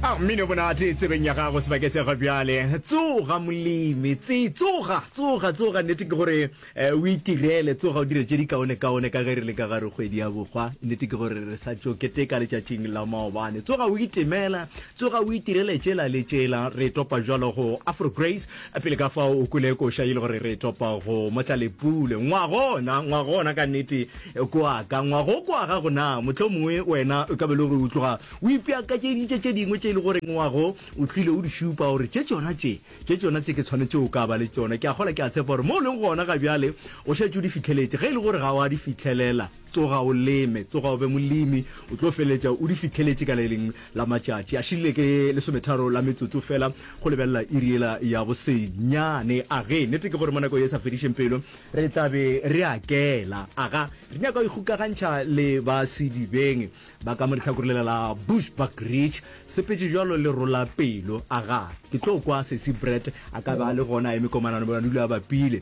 A mmino monate tsebeng ya gago sebake se ga bjale tsoga molemi tse tsoga tsoga tsoga nnete ke gore eh, o itirele tsoga o dire tše dikaone kaone ka ge re le ka gare kgwedi ya bokgwa nnete ke gore re sa tšo keteka letšatšing la maobane tsoga o itemela tsoga o itirele tšela le tšela re topa jalo go afro grace A pele ka fao o kwele koša e le gore re topa go mo tla Lepule. Ngwago ona, ngwago ona ka nnete kwa ka, ngwago kwa gago na? Mohlomongwe wena o ka be le gore o tloga o ipeakatšeditše tše dingwe tše e le gore ngwago o tlile o di šupa gore tše tšona tše, tše tšona tše ke tshwanetše o ka ba le tšona. Ke a kgolwa ke a tshepa gore mo o leng gona ga bjale o šetše o di fihleletše ge e le gore ga wa di fihlelela. Tsoga o leme, tsoga o be molemi, o tlo feletša o di fihleletše ka le lengwe la matšatši. A šile ke lesometharo la metsotso fela go lebelela iri yela ya bosenyane. Age, nete ke gore mo nako ye e sa fedišeng pelo re tla be re a kela. Aga, re nyaka go ikgokagantšha le ba sedibeng ba ka mo lehlakore lela la Bushbuck Ridge. Sepetše bjalo le rola pelo. Aga, ke tlo kwa Sesi Brett a ka be a le gona a eme komanano, a dula a bapile.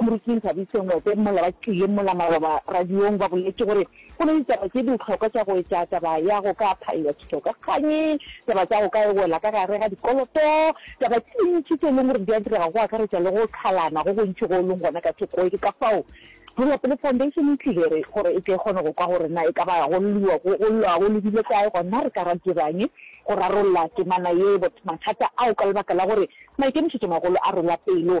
Moriking Thabiso Ngwete mola ba tlile mola maloba radiong ba boletše gore go na le ditaba tše dihlokwa tša go etša, taba ya go ka phaella tšhithokakganyi, taba tša go ka wela ka gare ga dikoloto, taba tše dintši tše e leng gore di a direga go akaretša le go qhalana go gontši go leng gona ka thoko. Ke ka fao Tšwelapele Foundation e tlile re gore e tle e kgone go kwa gore na e ka ba go lliwa go llwa go lebile kae gona re ka ra dira'ng go rarolla temana ye, mathata ao ka lebaka la gore maikemišetšomagolo a rwela pelo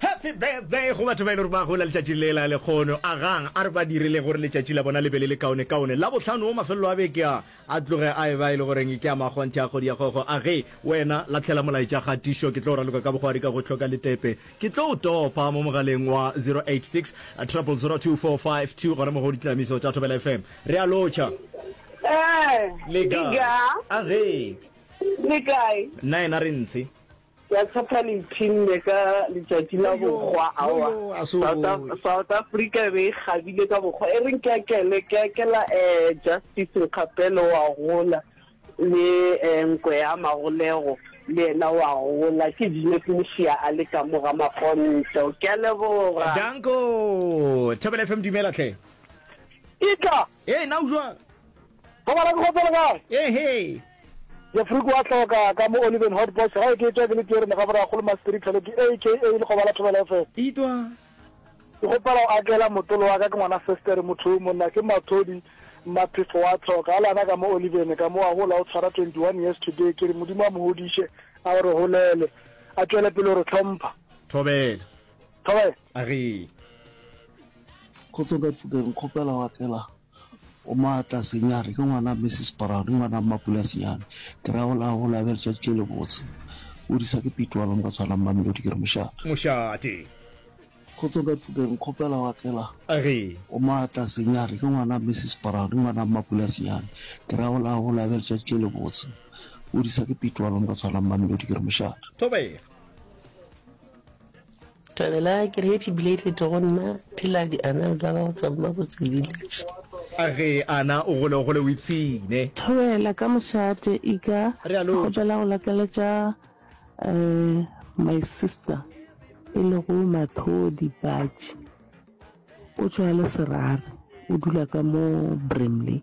Happy birthday go batho ba e le gore ba gola letšatši le la lekgono. Agang a re ba direle gore letšatši la bona le be le le kaonekaone. Labohlano wo mafelelo a beke a, a tloge a eba e le goreng ke a makgonthe a kgodi ya kgokgo. Age wena lahlela molaetša kgatišo, ke tlo o raloka ka bogwari ka go hloka letepe. Ke tlo o topa mo mogaleng wa 086 000 2452 gona mo go ditlamiso tša Thobela FM. Re a lotšha. Ee, Le kae? diga, Age le kae? nna yena re ntshe. Ke a tshepa le ipshinne ka letšatši la bohwa. Aowa, South, South Africa e be e kgabile ka bohwa. E reng ke a kele, ke a kela eh, Justice Nkgapele wa gola, le eh, Nkwe ya Magolego le yena wa gola. Ke Jeanette Mosia a le ka mo ga mafonto. Ke a leboga. Danko! Thobela FM, dumela hle. Ke tla. Hei, na o jwang? Go bala ke go tsele kae? Ehe. Jefriko wa hloka ka mo Oliven Hot Box ga e ke etwa ke le tierene ga bora kgolo Maspiri Tlhole ke AKA le go bala Thobela FM. Itwa. Ke gopela o akela motolo wa ka ke ngwana Sestere motho o monna ke Mathodi Maphefo wa hloka a lana ka mo Oliven ka mo a hola o tshwara 21 years today ke re modimo a mo hodiše a o re holele a tšwele pele o re tlhompha. Thobela. Thobela. A re. Kgotso ka Thukeng kgopela o akela. O maatla, senyane, ke ngwana Mrs. Brown, ke ngwana Mmapula senyane. Ke ra gola a gola a be le tšatši le lebotse. O disa ke Pete wa bang ba tshwanang Mamelodi, ke re mošate. Mošate. Kgotsong ka difokeng, nkgopela wa tlela? A re. O maatla, senyane, ke ngwana Mrs. Brown, ke ngwana Mmapula senyane. Ke ra gola a gola a be le tšatši le lebotse. O disa ke Pete wa bang ba tshwanang Mamelodi, ke re mošate. Thobega. Thabela ke re happy belated go nna phela di anal tsa gago tsa mmabotse village. A ge a na o gole o gole o ipshine. Thobela ka mošate e ka Realo. kgopela go lakaletša um my sister e lego Mathodi Patši o tšwa Leserare o dula ka mo Brimley.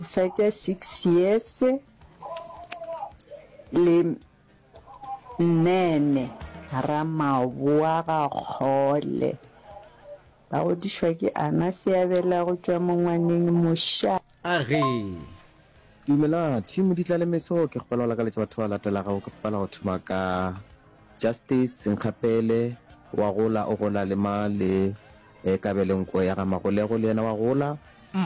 O fetša six years le nene. Ramaboagakgole ba godišwa ke Ana Seabela go tšwa Mongwaneng Mosha. A re, Dumelang, Team Moditla le Meso, ke kgopela go lakaletša batho ba latelago, ke kgopela go thoma ka Justice Senkgapele, wa gola, o gola le ma le. E ka be le nko ya ga Magolego le yena wa gola,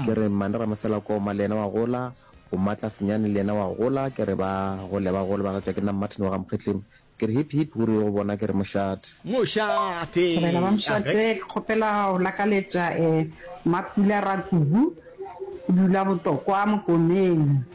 ke re Mmane Ramoselakoma le yena wa gola, Bomatla Senyane le yena wa gola, ke re ba gole ba gole ba gatšwa ke Nna Martin wa ga Mokgetli, ke re hip hip ruri go bona ke re Moshat. Moshate! Thobela ba Mshat ke kgopela go lakaletša Mmapula Rakubu o dula botokwa Mokomeng.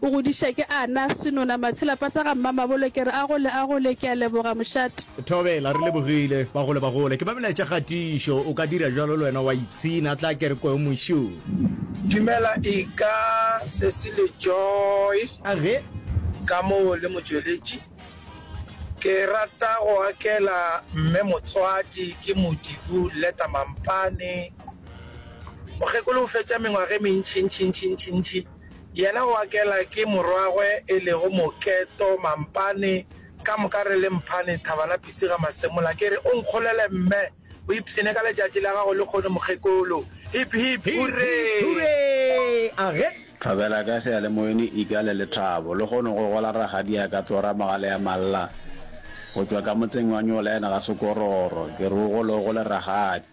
O godiša ke a na, senona Matshelapa sa ga Mmamabolo ke re a gole a gole ke a leboga mošate. Thobela, re lebogile, ba gole ba gole ke ba melaetša kgatišo o ka dira bjalo le wena wa ipshina tla ke re kweong mošung. Dumela eka sesi le joy Age. ka mo le motšweletši ke rata go akela mme motswadi ke modibu leta mampane mokgekolo o fetša mengwage mentšintšintšintšintši Yena o akela ke morwagwe e lego Moketo mampane, ka moka re le mphane thaba la pitsi ga masemola. Ke re o nkgolele mme, o ipshine ka letšatši la gago lekgono mokgekolo. Hip hip hurree! Thobela ka seyalemoyeng e ika le lethabo. Lekgono go gola ragadiaka Tlora Mogaleamalla go tšwa ka motseng wa Nyolena ga Sekororo. Ke re o gole o gole ragadi.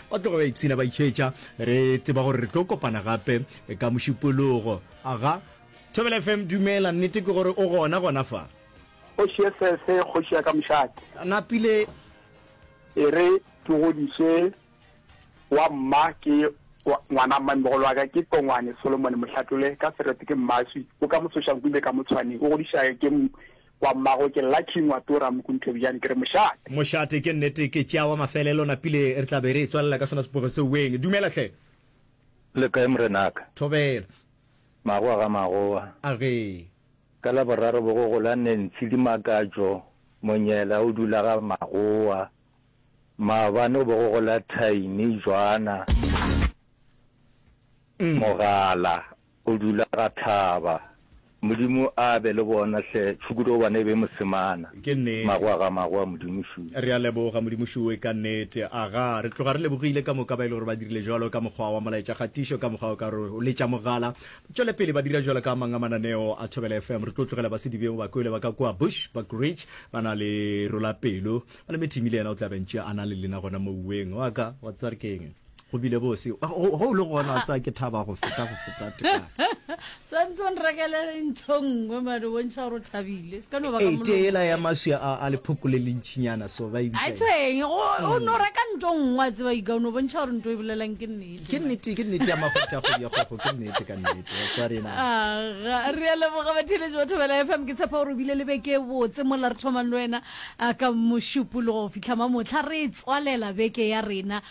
Ba tloga ba ipshina ba itšhetša. Re tseba gore re tlo kopana gape ka Mošupologo. Aga. Thobela FM, Dumela, nnete ke gore o gona gona fa? Kgoši ye sese, kgoši ya ka mošate. Napile. E re ke godiše wa mma ke ngwana mmamegolo wa ka ke Tongwane Solomon Mohlatlole ka Serete ke mmaswi o ka Mosošanku e be ka Motshwaneng o godišage ke Kwa mmago ke Lucky Ngwatora Mokunthebjane ke re mošate. Mošate ke nnete ke tšeawa mafelelo napile re tla be re e tswalela ka sona sepogo se weng. Dumela hle. Le kae morenaka? Thobela. Magoa ga magoa. A re. Ka laboraro bo go gola Nancy Dimakatšo Monyela o dula ga magoa. Maabane bo go gola Tiny Jwana Mogala O dula ga tlhaba. Modimo a be le bona hle Tšhukudu gobane e be e mo semana. Ke nnete. Magoa ga magoa Modimo Shuwe. Re a leboga Modimo Shuwe ka nnete. Aga, re tloga re lebogile ka moka ba e le gore ba dirile bjalo ka mokgwa wa molaetša kgatišo ka mokgwa o ka re o letša mogala. Tšwele pele ba dira bjalo ka a mang a mananeo a Thobela FM. Re tlo tlogela ba Sedibeng ba kwele ba ka kua Bush Buck Ridge ba na le Rolapelo. Malemethimi le yena o tla bentše a na le lena gona moweng wa ka wa tswa re keng. go bile bose go le gona a tsaya ke thaba go feta go feta santse nrekele ntho nngwe mane o bontšha gore o thabile se ka no ba ka tela ya maswi a a lephoko le lentšinyana so ba ibitsa a tshweng o no reka ntho nngwe a tseba ika o no bontšha gore ntho e bolelang ke nnete ke nnete ke nnete ya magotša go ya go ke nnete ka nnete wa tswa rena aga re ya leboga ba theletše batho ba la FM ke tshepa gore o bile le beke e botse mo la re thomang le wena ka mošupologo go fitlha mamotlha re tswalela beke ya rena